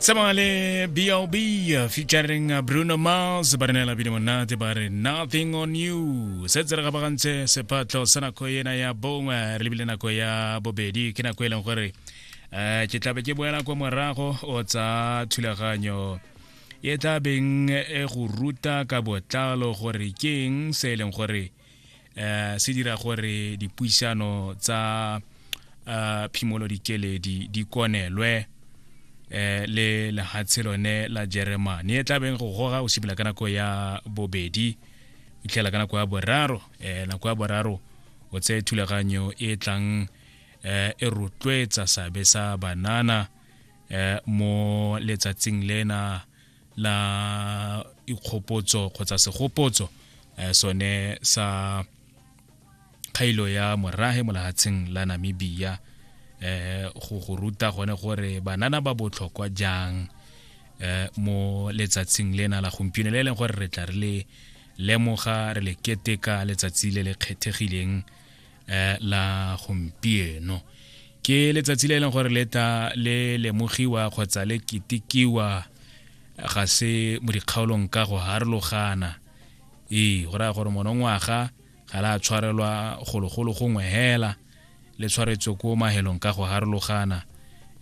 tsamaya le bob featuring bruno mars ba re neela bile monate ba re nothing on you se tse re gabagantse sephatlho sa nako ena ya bongwe re lebile nako ya bobedi ke nako e leng gore um ke tlabe ke boela kwa morago o tsa thulaganyo e tla beng e go ruta ka botlalo gore ke eng se e leng gore eh se dira gore dipuisano tsa eh, phimolo dikeledi di konelwe eh le lehatshe lone la Jeremane e tlabeng go goga o simela ka nako ya bobedi itlhela ka nako ya boraro eh nako ya boraro o tse thulaganyo e tlang eh e rotloetsa sabe sa banana eh mo letsatsing lena la ikgopotso kgotsa segopotso eh, sone sa kgailo ya morage molahatsheng la namibia eh go go ruta gone gore banana ba botlhokwa jang eh mo letsatsing lena la gompieno le e leng gore re tla re le lemoga re le keteka letsatsi le le kgethegileng eh, la gompieno ke letsatsi le e leng gore leta le lemogiwa kgotsa le ketikiwa ga se mo dikgaolong ka go harologana ee go raya gore monongwaga ga la tshwarelwa gologolo gongwe hela le tshwaretswe ko mahelong ka go harologana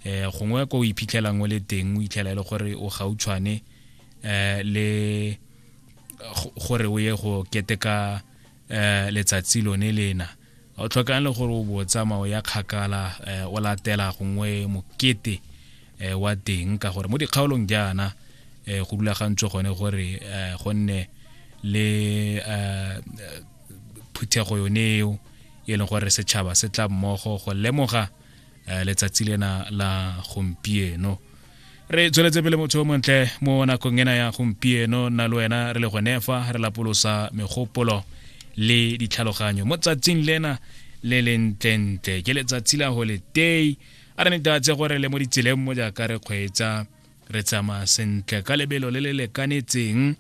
um gongwe ko o iphitlhelang o le teng o itlhela e le gore o gautshwane um le gore o ye go keteka um letsatsi lone lena o tlhokang le gore o bo tsamao ya kgakala um o latela gongwe mokete um wa teng ka gore mo dikgaolong jaana um go rulagantswe gone gore um gonne le um phuthego yone eo e leng gore setšhaba se tla mmogo go lemoga eh, letsatsi lena la gompieno re tsweletse pele motho o montle mo nakong ena ya gompieno nna le wena re le gone fa re lapolosa megopolo le ditlhaloganyo mo tsatsing lena le lentlentle ke letsatsi la go letei a re netatse gore le mo ditseleng mo jaaka re kgweetsa re tsamaya sentle ka lebelo le le lekanetseng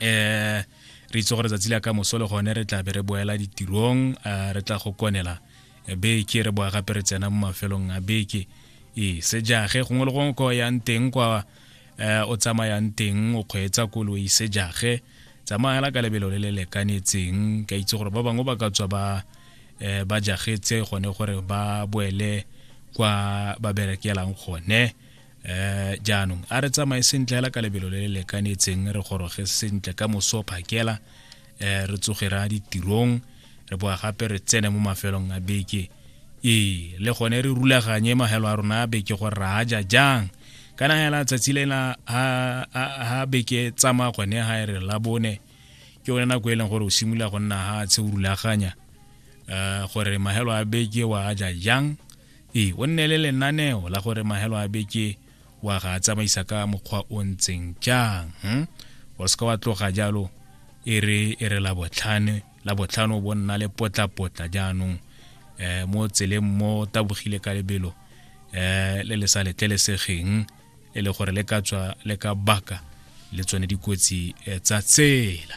eh re itse gore tsatsi la ka mosole gone re tla be re boela ditirong eh, re tla go konela eh, beke re boa gape re tsena mo mafelong a beke ee sejage gongwe le gongwe ko yang teng kwa eh, o tsamayang teng o kgweetsa koloi sejage tsamayela ka lebelo le le lekanetseng ka itse gore ba bangwe ba ka tswa ba eh, ba jagetse gone gore ba boele kwa ba berekelang gone eh jaanong a re tsamaye sentle hela ka lebelo le le lekanetseng re goroge sentle ka moso phakela eh re tsoge ra ditirong re boa gape re tsene mo mafelong a beke ee le gone re rulaganye mahelo a rona a beke gore ra ja jang kana hela tsatsi lela ha beke tsamaya gone ha e re la bone ke yone nako e leng gore o simolola go nna ha tshe o rulaganya um gore mahelo a beke wa a ja jang ee o nne le lenaneo la gore mahelo a beke wa ga a tsamaisa ka mokgwa o ntseng jang hmm? o seka wa tloga jalo e re e re labotlhane labotlhano bo nna le potlapotla jaanong um mo tseleng mo tabogile ka lebelo um le le sa letlelesegeng e le gore le ka tswa le ka baka le tsone dikotsi eh, tsa tsela